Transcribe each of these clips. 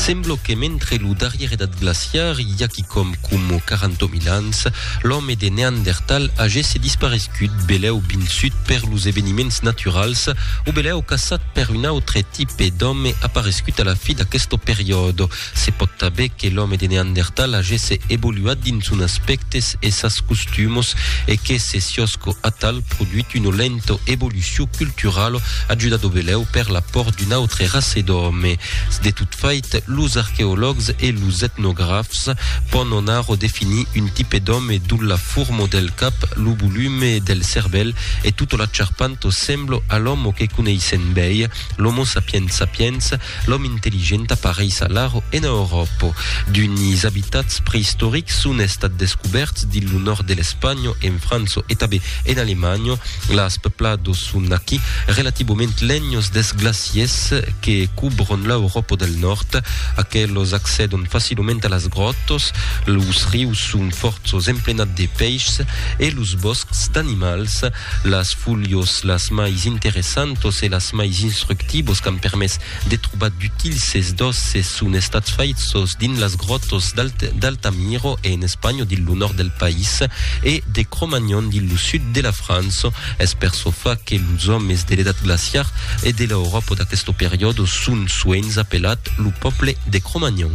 Semblo que mentre lo darrier edat glaciar, i a quicòm coma 40.000 ans, l'òme de Neandertal agesse disparescut, belèu binçut per los eveniments naturals o belèu caçat per un autre tipe d'òme aparescut a la fi d'aqueste periòde. Se pòt tanben que l'òme de Neandertal agesse evoluat dins son aspèctes e sas costumos e que se siòsco atal produit una lenta evolucion culturala ajudado belèu per l'apòrt d'una autre raça d'òme. De tot fait, los arqueològs e los etnografs pòn anarò definir un tipe d'òme dont la forma del cap, lo volume del cervèl e tota la charpanta sembla a l'òme que coneissèm bèi, l'Homo sapiens sapiens, L'òme intelligent apareis alara en Euròpa. D'unis abitats preistorics son estats descubèrts dins lo nòrd de l'Espanha, en França e tanben en Alemanha. Las peplados son aquí relativament lenhos dels glaciers que cubron l'Euròpa del Nòrd. Aqueles accèdon facilament a las gròtas. Los rius son fòrços emplenats de pèichs e los bòscs d'animals. Las fulhos las mais interessantos e las mais instructivos qu'an permés de trobar d'utils ses dòsses son estats faithos dins las gròtos d'Altamiro e en Espanha dins lo nòrd del país e de Cro-Magnon dins lo sud de la França. Es per çò fa que los òmes de l'edat glaciar e de l'Euròpa d'aqueste periòde son soens apelat lo pòble de Cro-Magnon.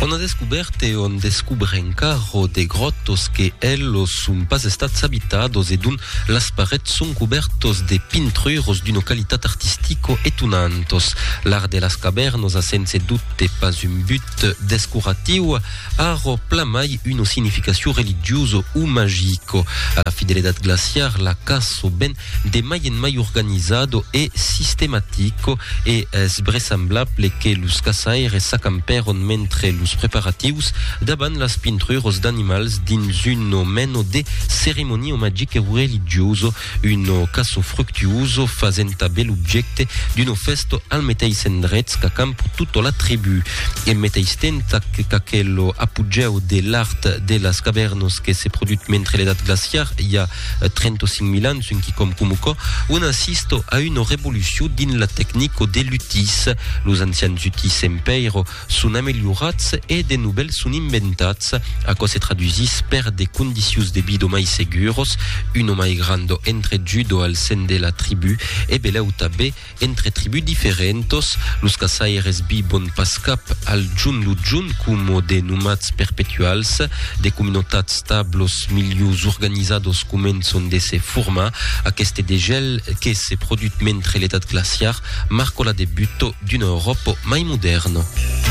On a descubèrt e on descubre encara de gròtos que elos son pas estats abitados e dont las parets son cubèrtos de pintruros d'una qualitat artistica etonantos. L'art de las cavèrnas a sense dubte pas un but descoratiu, Arro plamai una significacion religiosa o magica. A la fidelidad glaciar la caço ben de mai en mai organizada e sistematica e es bresamblable que los caçaires s'acampèron mentre los preparatius davant las pintruras d'animals dins una mena de ceremonia magica o religiosa Uno caso fructuoso fasent tanben l'objècte d'uno fèsto al meteis endrech qu'acamp tota la tribú. En meteis temps qu'aquel lo apogèu de l'art de las cavèrnos que se produt mentre l'edat glaciar i a 35 mil ans un quicòm coma aquò, un assist a una revolucion dins la tecnico de l'utís. Los ancians utís en pèira son amelhorats e de novèls son inventats, aquò se tradusís per de condicius de vida mai seguros, un o mai grand o entre jud o al sen de la tribu, e belèu tabé entre tribus diferentos, los caçaires vivon pas cap al junt lo junt coma de nomats perpetuals, de comunautats tablos milius organizados començon de se formar, aqueste degèl, que se produt mentre l'edat glaciar marcò la debut d'una Euròpa mai modèrna.